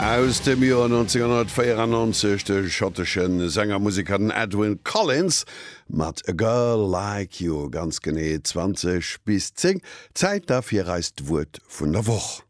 Aus dem Joer 1994, de schottesche Sänger, Museker, den Edwyn Collins mat A Girl Like You, ganz genee 20 bis 10. Zäit da fir eist Wuert vun der Woch.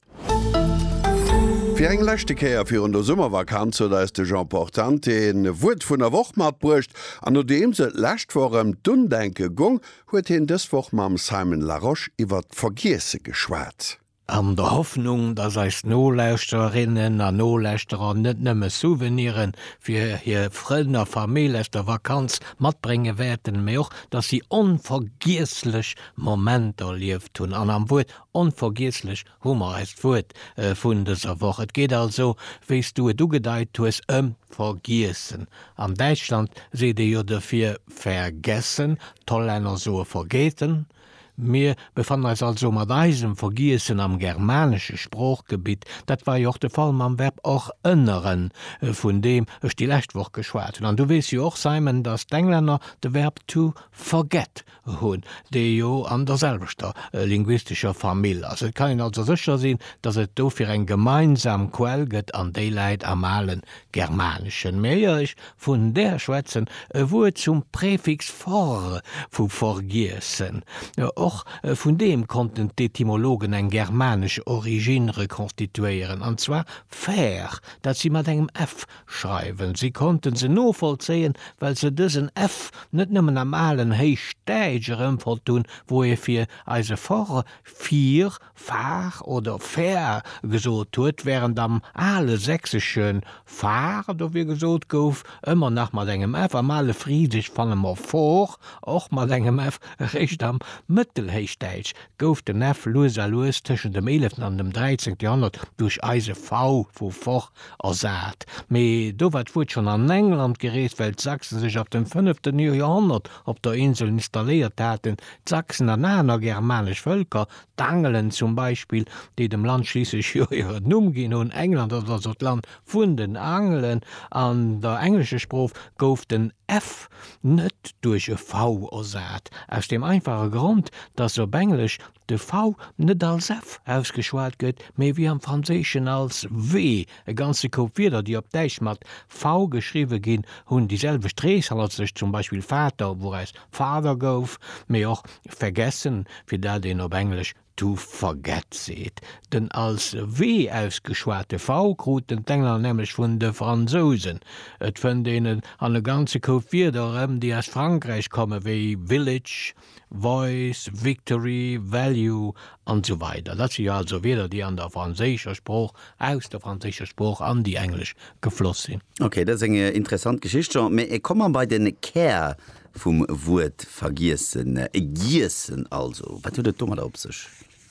Fir eng leschte Kéier virun der Summervakanz huet eis de Jean Portante en Wuert vun der Woch matbruecht, an nodeems et lescht Woch ëm d'Undenke gong, huet hien dës Woch mam Simon Larosche iwwert d'Vergiesse geschwat. An der Hoffnung, dass eis Nolauschtererinnen a Nolauschterer net nëmme Souvenire fir hir Frënn a Famill aus der Vakanz matbrénge wäerten, mä och, dass si onvergiesslech Momenter erlieft hunn. An am Wuert onvergiesslech hu mer eist Wuert vun dëser Woch. Et geet also, wéi s du et ugedeit hues, ëm Vergiessen. An Däitschland seet ee jo dofir vergessen, d'Hollänner soe vergeten. Mir befannen eis also mat eisem Vergiessen am germanesche Sproochgebitt. Dat war jo och de Fall mam Verb och ënneren, vun deem ech déi lescht Woch geschwat hunn. An du weess jo och, Simon, datt d'Englänner de Verb to forget hunn, dee jo an derselwechter linguistescher Famill ass. Et kann een also sécher sinn, datt et dofir eng gemeinsam Quell gëtt, an déi läit am ale Germaneschen. Mee éier ech Vun der schwätzen, e Wuert zum Präfix for, vu vergiessen. Och vun deem konnten d'Etymologen eng germanesch Origine rekonstituéieren, an zwar fer, dat si mat engem f schreiwen. Si konnte se novollzéien, well se dësen f net nëmmen am alen Héichdäitsch erëmfonnt hunn, wou e fir eise for, fier, Far oder Fär gesot huet, wärend am ale Sächsesche Far dofir gesot gouf, ëmmer nach mat engem f. Am ale Frisesch fanne mer for, och mat engem f. Eréischt am Mëttelhéichdäitsch gouf den f lues a lues tëschent dem eeleften an dem dräizéngte Joerhonnert duerch eise v vu for ersat. Mee do war d'Wuert schonn an England gereest, well d'Sachsen sech ab dem fënneften Joerhonnert op der Insel installéiert haten. D'Sachsen an aner germanesch Vëlker D'Angelen zum Beispill, déi dem Land schliisslech jo hiren Numm ginn hunn, England ass also d'Land vun den Angelen, an der englescher Sprooch gouf den f net duerch e v ersat, aus deem einfache Grond, datt op Englesch de v net als f ausgeschwat gëtt, mee wéi am Franséischen als w E ganze Koup Wierder, déi op Däitsch mat v geschriwwe ginn, hunn déi selwecht Reeshall als sech, zum Beispill Vater, wouraus Father gouf, mee och vergessen, fir dat een op Englesch to forget seet. Den als w ausgeschwate v kruten d'Engler nämlech vun de Fransousen. Et fënnt een et an e ganze Koup Wierder erëm, déi aus Frankräich kommen, wéi village, Voice, Victory, Value an esou weider Dat si jo also Wierder, déi an der franséischer Sprooch, aus der franséischer Sprooch an déi englesch gefloss sinn. Ok, dat ass eng interessant Geschicht, Jean. Mä komm mer bei den Kär vum Wuert vergiessen. Giessen also, wat huet et domadder op sech?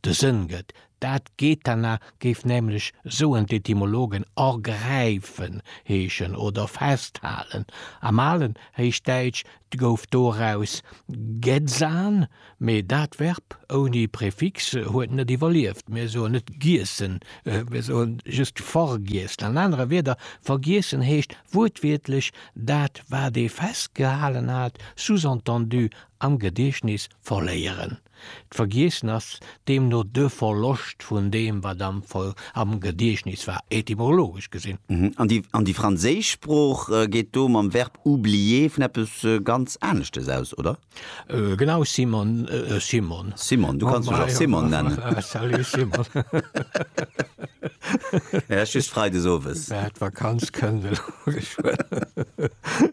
de Sënn gëtt. Dat Gethana géif nämlech, soen d'Etymologen, ergräifen heeschen oder festhalen. Am alen Héichdäitsch gouf doraus gedzan, mee dat Verb ouni Prefix huet net iwwerlieft. Mir soen net giessen, mir soe just vergiessen. An anere Wierder, vergiessen heescht wuertwiertlech dat, wat ee festgehalen hat, sous-entendu am Gediechtnis verléieren. D'Vergiessen ass deemno de Verloscht vun deem, wat am Gediechtnis war, etymologesch gesinn. An déi franséisch Sprooch geet do mam Verb oublier vun eppes ganz aneschtes aus, oder? Genau, Simon, Simon. Simon, du kanns mech och Simon nennen. Salut, Simon. Mä just freides owes. Mä d'Vakanz kënnt elo geschwënn.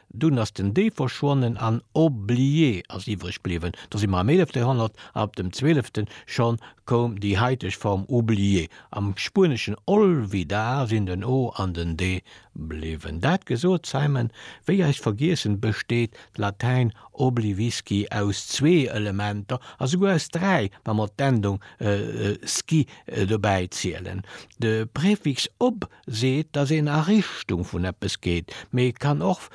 Dunn ass den Dee verschwonnen an Oublie ass iwwreg bliwwen. Do si mer am eelefte Joerhonnert a op dem zwölfte schonn koum déi haiteg Form Oublié. Am Spueneschen olvidar sinn den o an den de bliwwen. Dat gesot, Simon, wéi eis vergiessen, besteet d'Latäin oblivisci aus zwee Elementer a souguer aus dräi, wa mer d'Endung, sci dobäi zielen. De Prefix ob seet, dass een a Richtung vun eppes geet, mee et kann och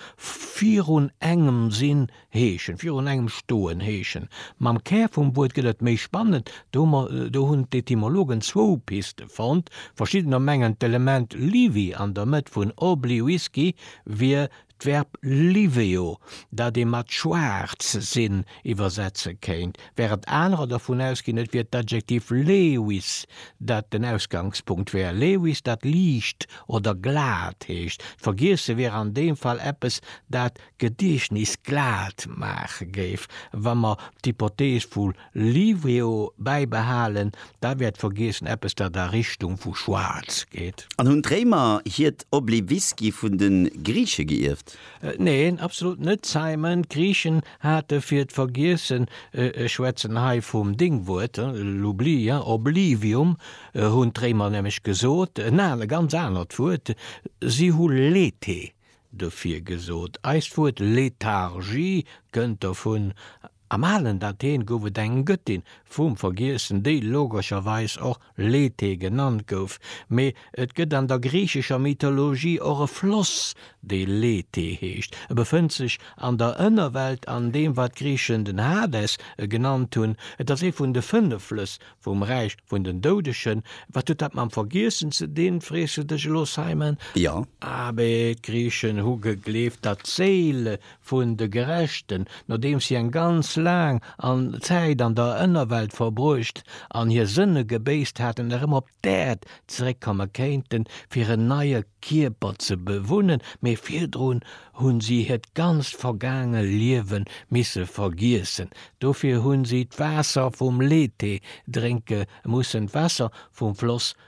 virun engem sinn heeschen, virun engem stoen heeschen. Mam Kär vum Wuert gëtt et méi spannend, do hu mer, do hunn d'Etymologen zwou Piste fonnt. Verschiddener mengen, d'Element liwi an der Mëtt vun obli, Whisky, wier D'Verb liveo, dat ee mat schwaarz sinn iwwersetze kéint, wärend anerer dervun ausginn, et wier d'Adjektiv lewis, dat den Ausgangspunkt wär, lewis, dat liicht oder glat heescht. Vergiesse wier an deem Fall eppes, dat d'Gediechtnis glat maache géif, wa mer d'Hypothees vu Livio bäibehalen, da wäert vergiessen eppes dat a Richtung vu schwaarz geet. An hunn d'Réimer hiert Obliviski vun de Griiche geierft? Neen, absolut net, Simon. D'Griichen hate fir d'Vergiessen, ech schwätzen hei vum Déngwuert, l'oubli, oblivium, hunn d'Réimer nämlech gesot, en anert, ganz anert Wuert, si hu Lethe dofir gesot. Eist Wuert Lethargie kënnt dovun. Am alen Athen gouf et eng Gëttin vum Vergiessen, déi logescherweis och Lethe genannt gouf, mee et gëtt an der griichescher Mythologie och e Floss, dee Lethe heescht. E befënnt sech an der Ënnerwelt an deem, wat d'Griichen den Hades genannt hunn. Et ass ee vun de fënnef Flëss vum Räich vun den Doudegen. Wat huet dat mam Vergiessen ze dinn, frees du dech elo, Simon? Jo. Abee, d'Griichen hu gegleeft, datt d'Séile vun de Gerechten, nodeems si eng ganz laang an Zäit an der Ënnerwelt verbruecht an hir Sënne gebéisst haten, erëm op d'Äerd zeréckkomme kéinten, fir en neie Kierper ze bewunnen, mee virdrun hu si hiert ganzt vergaange Liewe misse vergiessen. Dofir hu si d'Waasser vum Lethe drénke mussen, d'Waasser vum Floss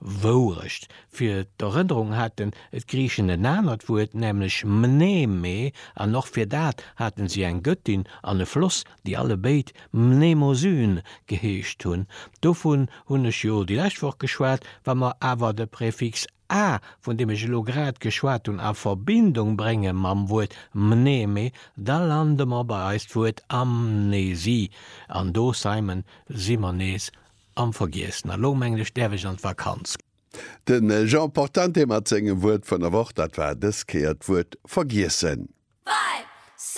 Wourecht, fir d'Erënnerung haten d'Griichen en anert Wuert, nämlech mneme, an och fir dat hate si eng Göttin an e Floss, déi allebéid Mnemosyne geheescht hunn. Dovun hunn ech jo déi lescht Woch geschwat. Wa mer awer de Prefix a, vun deem ech elo grad geschwat hunn, a Verbindung brénge mam Wuert mneme, da lande mer bei eist Wuert Amnesie, an do, Simon, si mer nees Am vergiessen. A lo mengen ech däerf ech an d'Vakanz. De Jean Portante mat sengem Wuert vun der Woch, dat war dës Kéier d'Wuert vergiessen.